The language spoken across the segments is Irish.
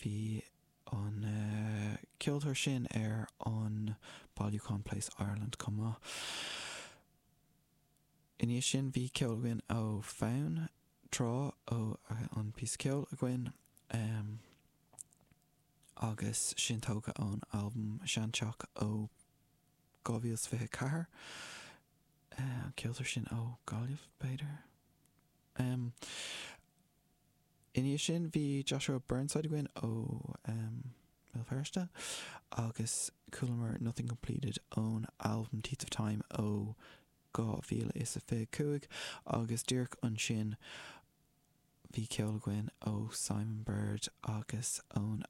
Bhí an ceoltóir sin ar an bailiúchán PLACE: Ireland chomh maith. I ndiaidh sin bhí ceol againn ó Fonn Trátha, an píosa ceoil againn agus sin tógtha ón albam Sean Teach ó 2024. An ceoltóir sin ó Gaillimh, b'fhéidir? I ndiaidh sin bhí Joshua Burnside againn ó em. Bhéal Feirste agus chualamar Nothing Completed ón albam Teeth of Time ó dhá mhíle is a fiche cúig agus díreach ansin bhí ceol againn ó Simon Bird agus ón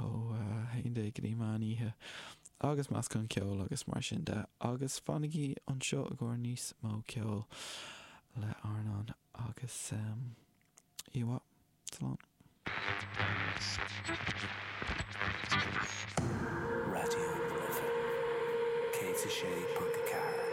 ó 11 go dtí meán oíche agus meascán ceoil agus mar sin de agus fanaigí anseo i gcomhair níos mó ceoil le Arnán agus Íomhá. Slán. Raidió na Life 106.4.